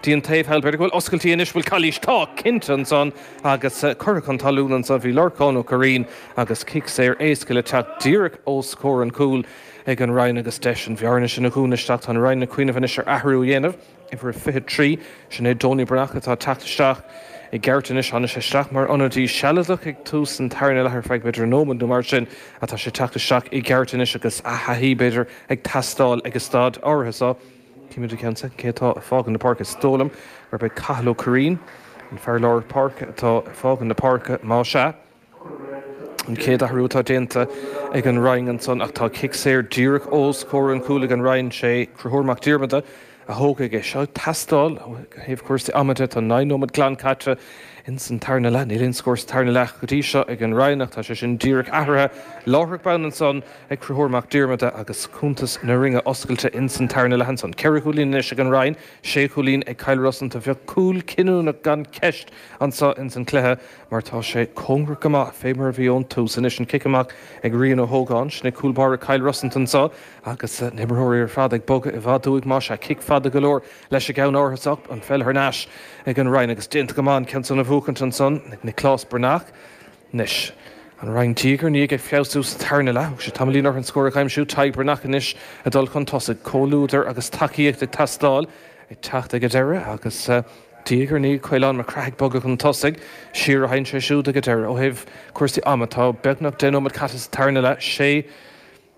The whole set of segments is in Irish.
dtí an taobh thall. B'fhéidir go bhfuil oscailtí anois, bhfuil calaois, tá, cinnte, ansan agus curtha chun talún ansan. Bhí Lorcán Ó Curraoin agus cic saor éasca le teacht díreach os comhair an chúil ag an Rinn agus deis an bhearna sin a dhúnadh isteach. Tá an Rinn ag cuimhneamh anois ar athrú a dhéanamh, uimhir a 23, sin é Donie Breathnach atá ag teacht isteach i gceart anois. Tháinig sé isteach mar ionadaí sealadach ag tús an tarna leath ar feadh b'fhéidir nóiméad nó mar sin ach tá sé ag teacht isteach i gceart anois agus a thaithí, b'fhéidir, ag teastáil ag an staid áirithe. Cífimid i gceann soicind cé atá ag fágaint na páirce. Is dóigh liom gurb é Cathal Ó Curraoin, an fear lár páirce, atá ag fágaint na páirce, más ea. An chéad athrú atá déanta ag an Rinn ansan ach tá cic saor díreach os comhair an chúil ag an Rinn. Sé Conchúr Mac Diarmada a thógfaidh é seo. Ag teastáil ó thaobh cúrsaí ama de, tá naoi nóiméad glan caite ins an tarna leath. Níl aon scór sa tarna leath go dtí seo ag an Rinn ach tá sé sin díreach athraithe. Láithreach bonn ansan. Conchúr Mac Diarmada agus cuntas na Rinne oscailte ins an tarna leath ansan. Ceithre chúilín anois ag an Rinn, sé chúilín ag Cill Rosanta. Bheadh cúl cinniúnach gan ceist anso ins an cluiche mar tá sé cóngarach go maith fé mar a bhí ón tús. Anois an cic amach ag Rian Ó hÓgáin. Sin é cúl báire Cill Rosanta anso agus na himreoirí ar fad ag bogadh i bhfad uaidh. Más ea, cic fada go leor leis an gceann áirithe so. An pheil thar n-ais ag an Rinn agus déanta go maith an ceann san a bhuachaint ansan ag Niclás Breathnach. Anois. An Rinn diaidh ar ndiaidh ag feabhsú sa tarna leath. Thóg sé tamaillín orthu an scór a aimsiú, Tadhg Breathnach anois ag dul chun tosaigh, comhluadar agus tacaíocht ag teastáil, ag teacht ag an deireadh agus diaidh ar ndiaidh Caolán Mac Craith ag bogadh chun tosaigh, siar a théann sé siúd ag an deireadh. Ó thaobh cúrsaí ama, tá beagnach deich nóiméad caite sa tarna leath, sé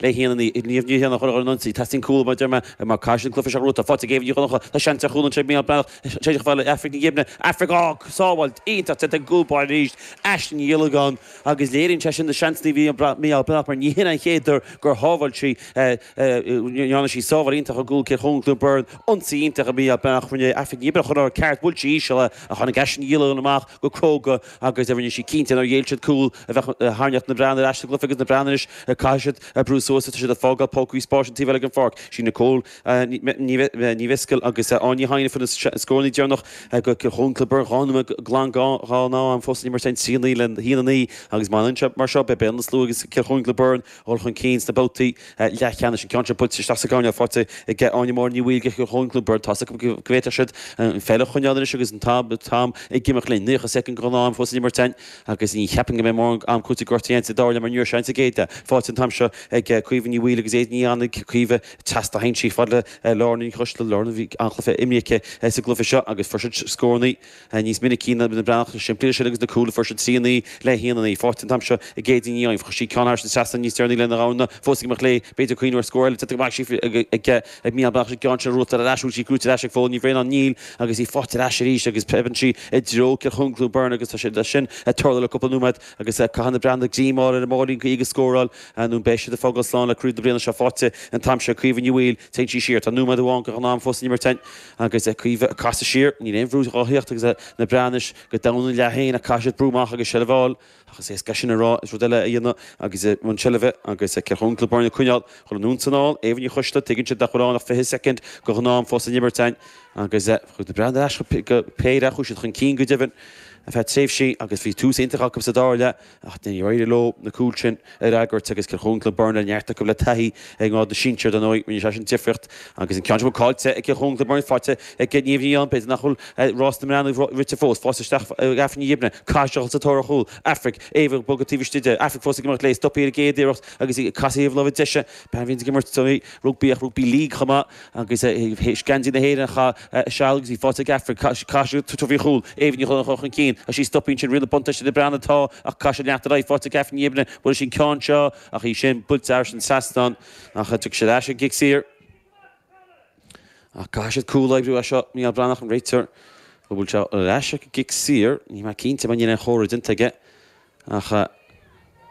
Le haon a naoi, Niamh Ní Ghrianna a chur ar an ionsaí, teastaíonn cúl mar a deir mé, i Mac Caislean, Cluife Seach Ruata, faighte ag Aoibheann Ní Dhonncha, tá seans ar chúl anseo ag Micheál Breathnach, séideadh fear le Aifric Ní Ghibne, Aifric, á, sábháil iontach déanta ag an gcúl báire arís, Aisling Ní Ghiollagáin, agus léiríonn sé sin na seansanna a bhí ag Micheál Breathnach mar ní shin an chéad uair gur shábháil sí, dhearna sí sábháil iontach i gcúl Chill Choirín Cluain Bheirn, ionsaí iontach ag Micheál Breathnach, rinne Aifric Ní Ghibne chuile rud ceart, buailte íseal ach tháinig Aisling Ní Ghiollagáin amach go cróga, Agus a rinne sí cinnte nár ghéill siad cúl a bheadh ag tarraingt na mBreathnaigh ar ais sa gcluiche agus na Breathnaigh anois caithfidh siad ag brú suas is tá siad ag fágáil pócaí spáis an taobh eile den pháirc. Sí Nicole Ní Mhiscil agus Áine Ní Chadhain a fuair na scórannaí deireanach do Chill Choirín Cluain Bheirn, dhá nóiméad glan de ghnáth-am fós san imirt féin trí a naoi le haon a naoi agus má fhanann sé mar seo beidh an slua agus Cill Choirín Cluain Bheirn dhul chun cinn sna babhtaí leathcheannais, an ceann seo buailte isteach sa gcoirnéal faighte ag Áine Máire Ní Mhaoilghe agus Eoin Kluivert. Tá 's acu go bhféadfadh siad an pheil a choinneáil anois agus an t-am ag imeacht linn. Naocha soicind den ghnáth-am fós le n-imirt ann agus ní cheapfainn go mbeidh mórán am cúitimh gortaithe ann sa deireadh le mar níor seans a gcéadta faighte an t-am seo ag Caoimhe Ní Bhaoill agus Éadaoin Ní Annaidh. Caoimhe Chast a sheinn sí fad le Lauren Ní Choisteala. Lauren, bhí an-chluiche imrithe aici sa gcluiche seo agus fuair siad scórannaí. Tá níos minicí ná na Breathnaigh simplí ansin agus na cúlfhoirse ag trí a naoi le haon a naoi. Faighte an t-am seo ag Éadaoin, chuir sí ceann thairis an trasnán níos deireanaí lena ghamhna fós ag imeacht léi, b'fhéidir ag cuimhniú ar scór eile déanta go maith sí ag mí an Mheán. An ceann sin brúite ar ais chuig sí brúite ar ais ag fód Ní Bhraonáin Níl agus í faighte ar ais arís agus piocann sí i dtreo Chill Choirín Clonberne agus tá sé sin ag tarlú le cúpla nóiméad agus caithfidh na Breathnaigh greim a fháil ar an mbáilín caoi agus scóráil nó beidh siad ag fágáil slán le craobh na bliana seo. Faighte an t-am seo ag Caoimhe Ní Bhaoill téann sí siar, tá nóiméad amháin de ghnáth-am fós le n-imirt. Agus a Caoimhe, casadh siar, níl aon bhrú dhá theacht agus na Breathnaigh anois go domhain ina leath fhéin ach caithfidh siad brú amach agus seilbh a fháil ach is éasca sin a rá is rud eile a dhéanamh agus i mbun seilbhe agus Cill Choirín Clonberne ag coinneáil chun anonn 's anall, Éabha Ní Choisteala, tuigeann siad nach bhfuil ann ach 20 soicind de ghnáth-am fós le n-imirt ann agus chuaigh na Breathnaigh ar ais go péire, chuaigh siad chun cinn go deimhin ar feadh tréimhsí agus bhí tús iontach acu sa dara leath. Ach níor éirigh leo na cúil sin a fhreagairt agus Cill Choirín Clonberne neart acu le taithí i ngrád na sinsear, dar ndóigh, rinne sé sin difríocht. Agus an ceann seo blocáilte ag Cill Choirín Clonberne faighte ag Niamh Ní Eidhin, b'fhéidir nach bhfuil rás na mBreathnach rite fós. Faighte istigh ag Aifric Ní Ghibne, caithfidh siad a dhul sa tóir ar chúl. Aifric, Éabha ag bogadh taobh istigh di. Aifric fós ag imeacht léi, stopadh í ar an gcéad iarracht agus í ag casadh ar thaobh na láimhe deise. Bean a bhíonn ag imirt rugbaí ach rugbaí league chomh maith. Agus é ag sceinnt na hÉireann, chaith seal agus í faighte ag Aifric, caithfidh sí tabhairt faoi chúl, éimhní chun chun chun cinn, agus sí stopfaí ansin, riail an bhuntáiste do na Breathnaigh atá, ach caithfidh sí leanacht ar aghaidh, faighte ag Aifric Ní Ghibne, buailfidh sí an ceann seo, ach í sin buailte thairis an trasnán, ach tiocfaidh siad ar ais ag an gcic saor. Ach caithfidh siad cúl a oibriú as seo, Mícheál Breathnach an réiteoir, bhuail sé ar ais ag an gcic saor, níl mé cinnte mar níl aon chomhartha déanta aige. Ach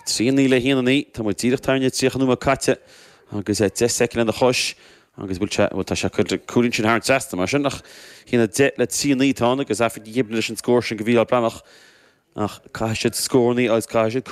trí a naoi le haon a naoi, tá muid díreach thar na tríocha nóiméad caite agus deich soicind lena chois agus bhuel, sea, tá sé curtha, cúilín sin thar an trasnán mar sin a haon a deich le trí a naoi, tá an agus Aifric Ní Ghibne leis an scór sin do Mhícheál Breathnach ach caithfidh siad scórannaí agus caithfidh siad